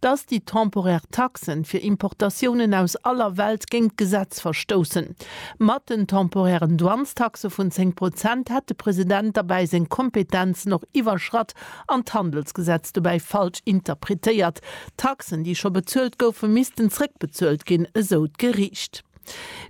dass déi temporär Taxen fir Importatiounen aus aller Welt géint d'Gesetz verstoussen. Mat den temporären Douanestaxe vun 10 Prozent hätt de President derbäi seng Kompetenzen och iwwerschratt an d'Handelsgesetz dobäi falsch interpretéiert. D'Taxen, déi scho bezuelt goufen, missten zrëckbezuelt ginn, esou d'Geriicht.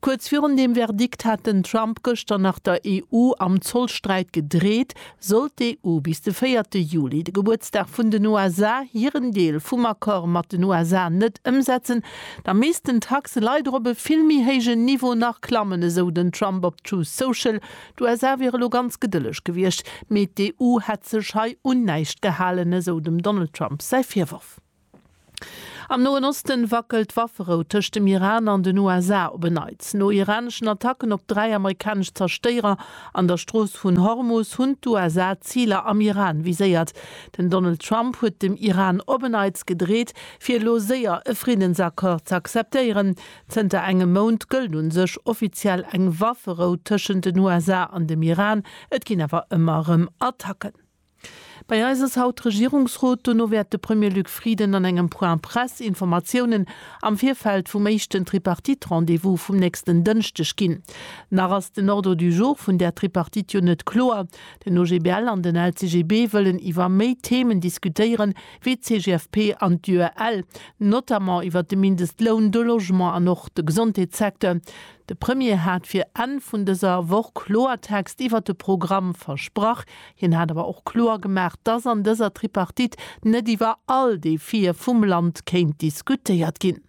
Kuerz virun deem Verdikt hat den Trump gëschter nach der EU am Zollsträit gedreet, sollt d'EU bis de véierte Juli, de Gebuertsdag vun den USA, hiren Deel vum Accord mat den USA net ëmsetzen, da missten d'Taxe leider op e vill méi héijen Niveau nach klammen, esou den Trump op Truth Social. D'USA wiere lo ganz gedëlleg gewiescht, mee d'EU hätt sech hei un näischt gehalen, esou dem Donald Trump säi Virworf. Am Noen Osten wackelt d'Wafferou tëscht dem Iran an den USA op en Neits. No iraneschen Attacken op dräi amerikanesch Zerstéierer an der Strooss vun Hormus hunn d'USA Ziler am Iran viséiert. Den Donald Trump huet dem Iran op en Neits gedreet, fir elo séier e Friddensaccord ze akzeptéieren. Zënter engem Mount gëllt un sech offiziell eng Wafferou tëschent den USA an dem Iran, et ginn awer ëmmer erëm Attacken. Bei eis ass haut Regierungsrot, dono wäert de Premier Luc Frieden an engem Point Presse Informatiounen am Virfeld vum éischten Tripartite-Rendez-vous vum nächsten Dënschdeg ginn. Nach ass den Ordre du jour vun där Tripartite jo net kloer. Den OGBL an den LCGB wëllen iwwer méi Themen diskutéieren, wéi d'CGFP an d'UEL, notamment iwwer de Mindestloun, de Logement an och de Gesondheetssecteur. De Premier hat fir Enn vun dëser Woch Kloertext iwwert de Programm versprach. Hien hat awer och kloer gemaach, dass an dëser Tripartite net iwwer all Defië vum Land kéint diskutéiert ginn.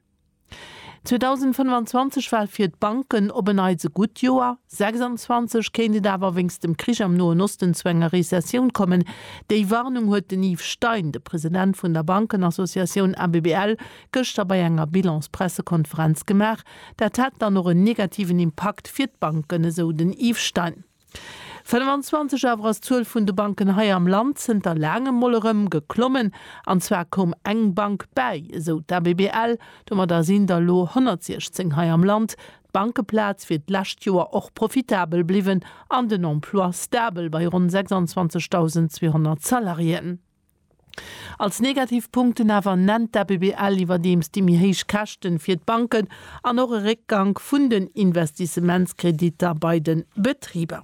2025 war fir d'Banken op en Neits e gutt Joer, 26 kéint et awer wéinst dem Krich am Noen Osten zu enger Rezessioun kommen. Déi Warnung huet den Yves Stein, de President vun der Bankenassociatioun ABBL, gëschter bei enger Bilans-Pressekonferenz gemaach. Dat hätt dann och en negativen Impakt fir d'Banken, esou den Yves Stein. 25 awer ass d'Zuel vun de Banken hei am Land zënter laangem mol erëm geklommen. An zwar koum eng Bank bäi, esou d'ABBL. Domadder sinn der elo 116 hei am Land. D'Bankeplaz wier d'lescht Joer och profitabel bliwwen an den Emploi stabel bei ronn 26.200 Salariéen. Als negativ Punkten awer nennt d'ABBL iwwerdeems déi méi héich Käschten fir d'Banken an och e Réckgank vun den Investissementskreditter bei de Betriber.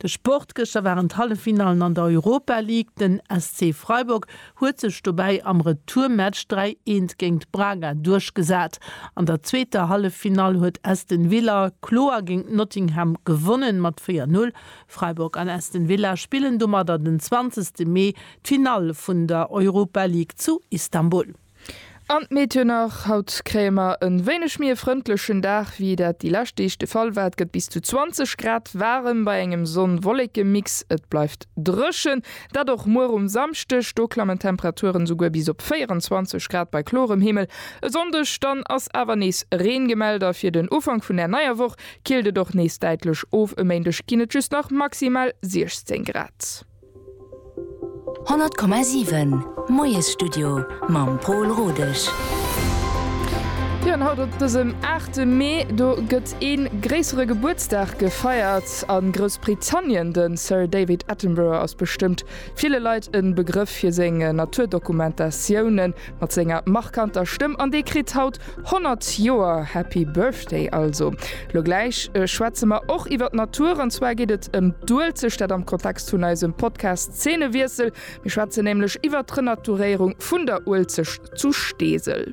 De Sport, Gëschter waren d'Halleffinallen an der Europa League. Den SC Freiburg huet sech dobäi am Retourmatch 3 eent géint Braga duerchgesat. An der zweeter Halleffinall huet Aston Villa kloer géint Nottingham gewonnen, mat 4 Null Freiburg an Aston Villa spillen domadder den 20 Mee d'Finall vun der Europa League zu Istanbul. An d'Meteo nach, Haut kréie mer e wéineg méi e frëndlechen Dag, wéi dat déi lescht Deeg de Fall war. Et gëtt bis zu 20 Grad waarem bei engem Sonn-Wolleke-Mix. Et bleift dréchen, dat och muer um Samschdeg. Do klammen d'Temperaturen esouguer bis op 24 Grad bei klorem Himmel. E Sonndeg dann ass awer nees Reen gemellt a fir den Ufank vun der neier Woch Killt et och nees däitlech of, e Méindeg ginn et just nach maximal 16 Grad. 100,7 Moiesstudio mam Pol Rodesch. Jo an haut op dësem aachte Mee, do gëtt ee gréissere Gebuertsdag gefeiert a Groussbritannien. De Sir David Attenborough ass bestëmmt ville Leit e Begrëff fir seng Naturdokumentatiounen. Mat senger markanter Stëmm an dee kritt haut 100 Joer. Happy Birthday also! Lo gläich schwätze mer och iwwer d'Natur, an zwar geet et ëm d'Uelzecht, dat am Kontext vun eisem Podcast Zeenewiessel. Mir schwätzen nämlech iwwer d'Renaturéierung vun der Uelzecht zu Steesel.